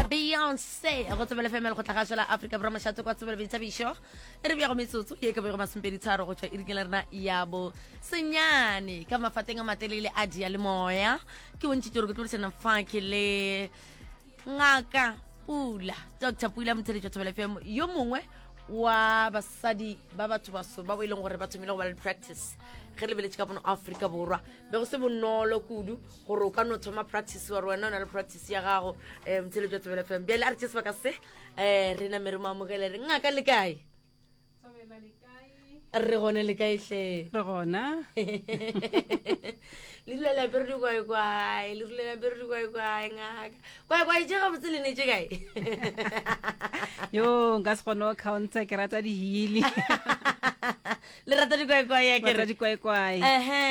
beyonce go tsebele femele go tlhagašo la aforika borwa mošate kwa tsebele boithabišo e re bjago metsotso ye ka bego masompedi tharo go tšwa e rikela rena ya bo senyane ka mafateng a matelele a dia le moya ke bontšhitse gore ke tlodisana fake le ngaka pula dr pula motheletšo tsebele fm yo mongwe wa basadi ba batho baso ba bo e leng gore ba thomile go ba le practice ge lebeletše ka bono aforika borwa be go se bonolo kudu gore o ka no thoma practice wa re wena o na le practice ya gago um motheletso wa tsebele fm bjale a re tse sebaka se um re name re mo amogele re ngaka le kae re gone le kae hle re gona le dula lape re di kwaekwae le dula lape re di kwaekwae ngaka kwaekwae je ga botse le ne je kae yo nka se kgone o counter ke rata dihili le rata dikwaekwae ya ke Rata re dikwaekwae ehe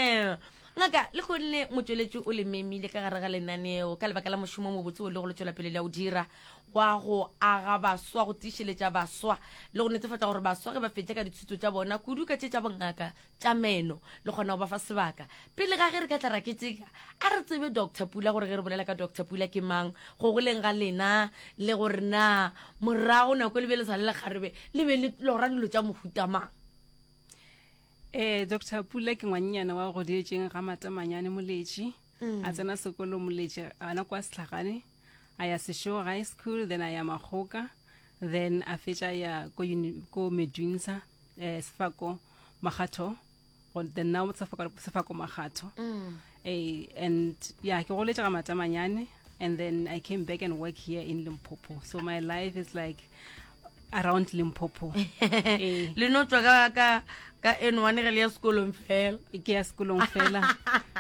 Ngaka, le gonne Motšweletši o le memile ka gare ga lenaneo ka lebaka la mošomo o mobotse wo le go le tšwelapele le a o dira, wa go aga baswa, go tiišeletša baswa le go netefatša gore baswa ge ba fetša ka dithuto tša bona, kudu ka tše tša bongaka tša meno, le kgona go ba fa sebaka. Pele ga ge re ka tla ra keteka, a re tsebe Doctor Pula gore ge re bolela ka Doctor Pula ke mang, go goleng ga lena le gore na morago nako e le bjale e sa le lekgarebe le be le lora dilo tša mohuta mang. ee doctor pula ke ngwannyana wa go dietšeng ga matamanyane moletši mm. a tsena sekolo moletši ana kwa setlhagane a ya sešogo high school then a ya magoka then a fetša ya ko medunsa um eh, sefako magatho then now sefako magatho mm. Hey, and yeah, ke goletše ga matamanyane and then I came back and work here in Limpopo. So my life is like around Limpopo. Eh. le no tswa ka ka ka N1 re le ya sekolong fela ke ya sekolong fela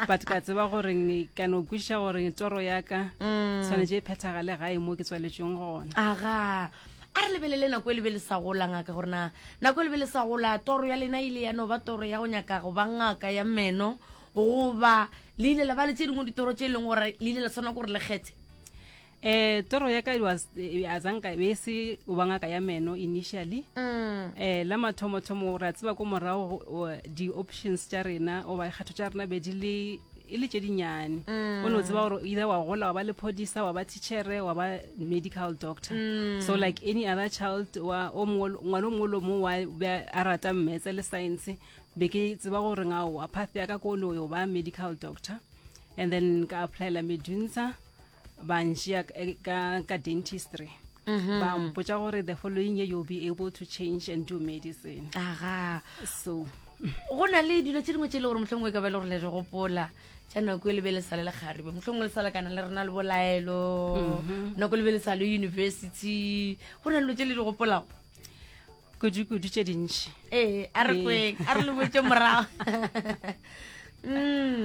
but ka tseba gore ne ka no kwisha gore tsoro ya ka mm. tshwanetse e phethagale gae mo ke tswaletsweng gona aga a re lebelele nako e lebe le sa gola ngaka gore na nako e lebe le sa gola toro ya lena ile ya no ba toro ya go nyaka go ba ngaka ya meno goba le ile la ba le tse dingwe ditoro tse e leng gore le ile la tshwana gore le kgethe eh toro ya ka it was eh, a zanka e se o ba ngaka ya meno initially um la mathomothomo ra tseba ko morago o- di-options tša rena oba kgetho tša rena be di le e le tše dinnyane o ne o tseba gore either wa gola wa ba lephodisa wa ba tichere wa ba medical doctor so like any other child wa o mongwe- ngwana o mongwe le o mongwe wa be a rata mmetse le science be ke tseba gore ngao a path ya ka kolo yo ba medical doctor and then ka applyela medunsa ba nšea eh, ka, ka dentistry Mm-hmm. ba mpotsa gore the following year you'll be able to change and do medicine aga so go na le dilo tse dingwe tse e le gore motlhongwe e ka ba e le gore le re gopola tša nako e lebe le sale le kgaribe motlhongwe le salakana le rena le bolaelo Mm-hmm. nako e lebe le sale university go na le dilo tse le di gopolago kudu-kudu tše dintši ee a re kweng a re le botse morago mm.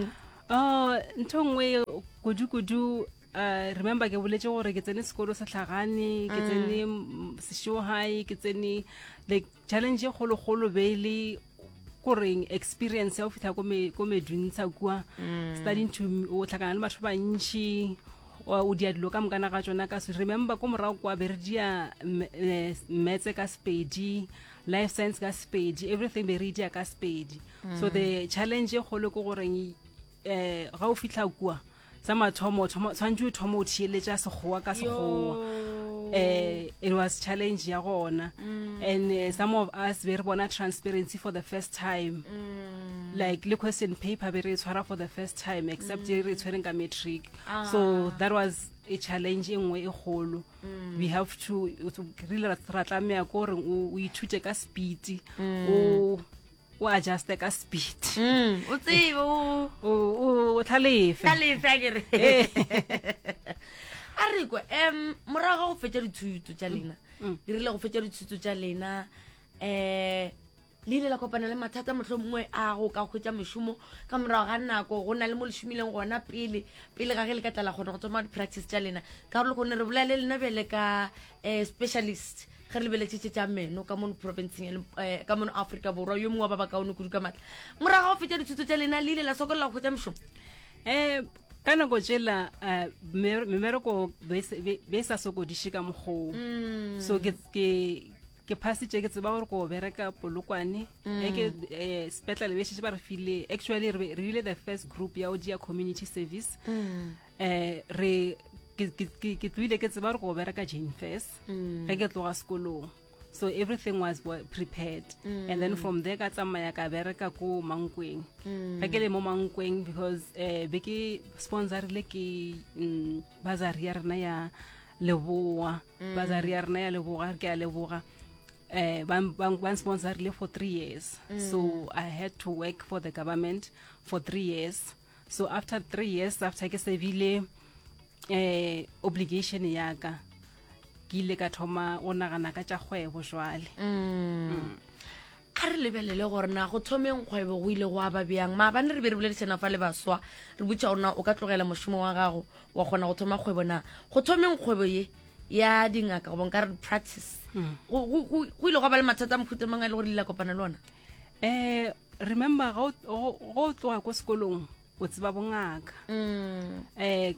oh, ntho nngwe kudu-kudu Uh, remember ke boletse gore ke tsene sekolo sa tlhagane ke mm. tsene seshow high ke tsene like challenge e kgologolo be e le koreng experience ya go fitlha ko meduntsha kua mm. studying to o tlhakana le batho bantšhi o dia dilo ka mokana ga tsona ka remember ko morago kwa be re dia eh, metse ka sepedi life science ka sepedi everything be re dia ka sepedi so the challenge e kgolo ke goreng um eh, ga o fitlha kua sa mathomo tshwanetse o thoma o thieletša sekgowa ka sekgowa um eh, it was challenge ya gona mm. and uh, some of us be re bona transparency for the first time mm. like le question paper be re e tshwara for the first time except e re e tshwereng ka matric ah. so that was a challenge e nngwe e kgolo mm. we have to really ra tlameya ko gore o ithute ka speed mm. o o adjuste ka speed mm, o tsebe o tlhalefe tlhalefe a kere eh. a re kwa um morago ga go fetsa dithuto tsa lena dirile go fetsa dithuto tsa lena um Le ile la kopana le mathata mohlomongwe a go ka hwetša mošomo ka morago ga nako go na le mo le šomileng gona pele pele ga ge le ka tla la kgona go tsoma di-practice tša lena ka gore kgone re bolele lena bjale ka um specialist ge re lebeletšetse tša meno ka mono provinceng um ka mono aforika borwa yo mongwe wa ba ba kaone kudu ka maatla morago ga go fetša dithuto tša lena le ile la sokolela go hwetša mošomo um ka nako tsela eh, memereko be e sa sokodiše ka mokgoo mm. so ke ke phasitše ke tseba gore ko bereka polokwane mm. eke um eh, sepetlele be šetse ba re file actually re rile the first group ya o jea community service um re ke tloile ke tseba gore go bereka jane first mm. ge ke tloga sekolong so everything was prepared mm. and then from there ka tsamaya ka bereka ko mankweng mm. ke le mo mankweng because um be ke sponsorile ke um bazari ya rena ya leboa mm. bazari ya rena ya leboga ke a leboga uh, ban, ban, ban sponsorile for three years mm. so i had to work for the government for three years so after three years after ke sebile eh, obligation ya ka ke ile ka thoma go nagana ka tša kgwebo jwale mm. mm. A re lebelele gore na go thomeng kgwebo go ile gwa ba bjang. Maabane re be re boledišana fa le baswa, re botša gore na o ka tlogela mošomo wa gago wa kgona go thoma kgwebo na. Go thomeng kgwebo ye ya dingaka goba nka re practice, mm. go ile gwa ba le mathata a mohuta mang a e le gore le la kopana le ona? Eh, remember go o tloga ko sekolong o tseba bongaka um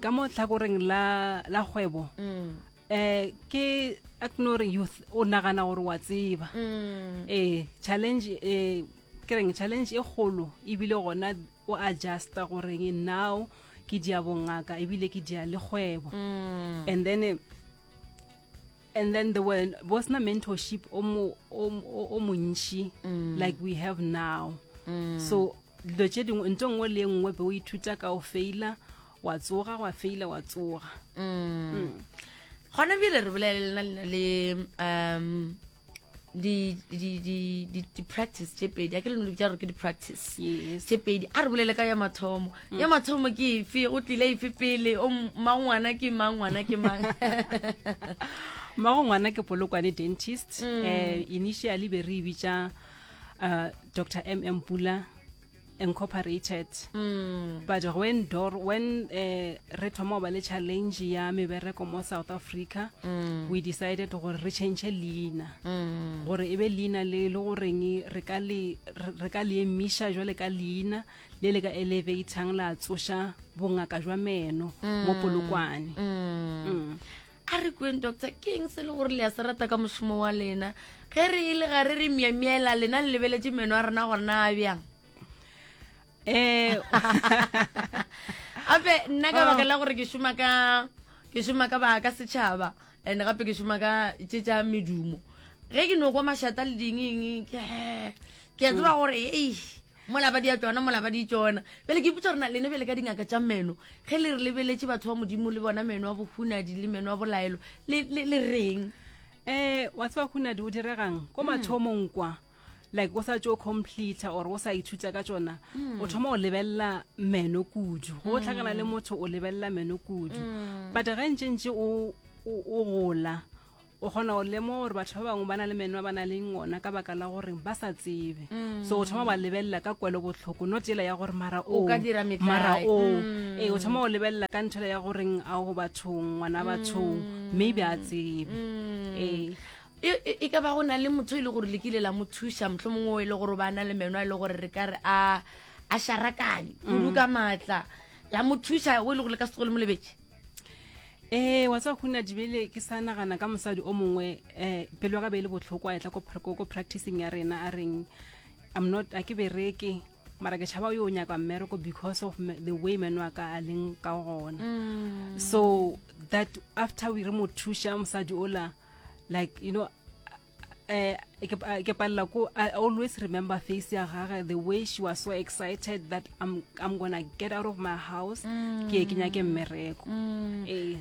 ka mo tlhakoreng la kgwebo mm. eh ke agnore youth o nagana gore wa tseba mm. eh challenge eh ke reng challenge e kgolo ebile gona o adjusta goreng now ke dia bongaka ebile ke dia le kgwebo mm. and then eh, and then there were was na mentorship o mo o montši mm. like we have now mm. so dilo tše dingwe nto nngwe le nngwe be o ithuta ka o faila wa tsoga wa feila wa tsoga mm. gona bile re bolelelena lena le um di-practice tše pedi a ke leno lebitsa gore ke di-practice tše pedi a re bolele ka ya mathomo mm. ya mathomo ke efe go tlile efe pele o mang ngwana ke mang ngwana ke mang mmago ngwana ke polokwane dentist um initially be re e bitsa uh, dr m m pula incorporated mm. but when door when uh, re thoma go ba le challenge ya mebereko mo south africa mm. we decided gore re change leina mm. gore e be leina le le goreng re ka le re ka le emisha jwale ka leina le le ka elevatang la tsoša bongaka jwa meno mm. mo polokwane mm. mm. a re kweng doctor ke eng se le gore le ya se rata ka mošomo wa lena ge re e le ga re re miamiela lena le lebeletše meno a rena gore na a bjang um gape nna ka baka la gore ke šoma ka ke šoma ka baka setšhaba and gape ke šoma ka tše tša medumo ge ke no kwa mašata le dingeng ke ke a tseba gore ei Mola ba dia tšona, mola ba di tšona. Bjale ke ipotša gore na lena bjale ka dingaka tša meno, ge le re lebeletše batho ba Modimo le bona meno a bohunadi le meno a bolaelo, le, le, le reng? Eh, wa tseba hunadi o diregang ko mathomong kwa like o sa tšo completa or o sa ithuta ka tšona o thoma go lebelela meno kudu go tlhakana le motho o lebelela meno kudu but ge ntšentše o o- o gola O kgona go lemoga gore batho ba bangwe ba na le meno a ba na leng ona ka baka la gore ba sa tsebe so o thoma ba lebelela ka kwelo botlhoko not ela ya gore mara o ka dira metlae. mara o ee o thoma go lebelela ka nthela ya goreng a o bathong ngwana bathong maybe a tsebe ee e e- e ka ba go na le motho e le gore le kile la mo thuša motlho mongwe o e le gore o ba na le meno a e le gore re ka re a a šarakane kudu ka maatla la mo thuša o e le gore le ka se tlogo le mo lebetse ee wa tswa khuna dibele ke sa nagana ka mosadi o mongwe um pelo ka be e le botlhoko a etla ko practicing ya rena a reng i'm not a ke bereke mara ke tšhaba yo o nyaka mmereko because of the way meno a ka a leng ka gona mm. so that after we re mo thuša mosadi ola like you know eh, ke palela ko i always remember face ya gage the way she was so excited that i'm, I'm gonna get out of my house mm. ke ke nyake mmereko mm. eh,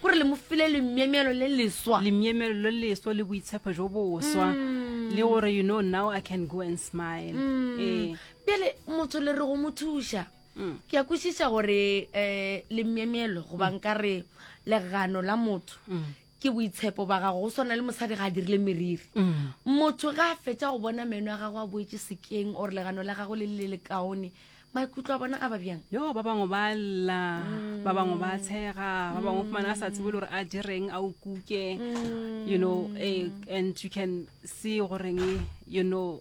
gore le mo file lemyemelo le leswa lemyemelo le leswa le boitshepo jo boswa mm. le gore you know now i can go and smile eh. pele motho le re go mo thuša ke ya kwešiša gore um eh, lemyemelo goba nka re legano la motho ke boitshepo ba gago go swana le mosadi ga a dirile meriri motho ga a fetsa go bona meno a gago a boetse sekeng or legano la gago le le le kaone maikutlo a bona a ba bjang yo ba bangwe ba lla ba bangwe ba tshega ba bangwe fumana a sa tsebe le gore a direng a o kuke you know eh, and you can see goreng you know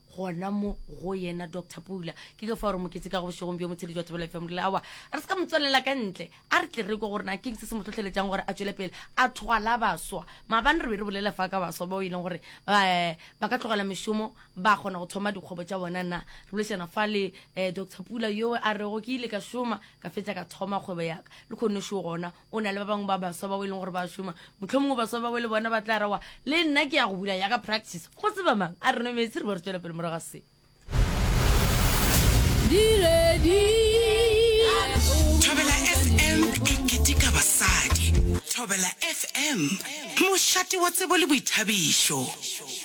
gona mo go yena doctor pula ke ke fa gore moketse ka go bošegong bjo motshedi jwa tsebela fm rile awa re se ka motswelela ka ntle a re tle re ko gore na keng se se mo tlhotlheletsang gore a tswele pele a thwala baswa maabane re be re bolela fa ka baswa bao e leng gore um ba ka tlogela mešomo ba kgona go thoma dikgwebo tša bona na re bolešana fa le um eh, doctor pula yo a rego ke ile ka šoma ka fetsa ka thoma kgwebo yaka le kgonešo gona o na le ba bangwe ba baswa bao e leng gore ba šoma motlho mongwe baswa bao le bona ba tla rawa le nna ke ya go bula yaka practice go se ba mang a re no metsi re bo re tswela pele moraga se thobela fm e ketika basadi thobela fm mošate wa tsebo le boithabišo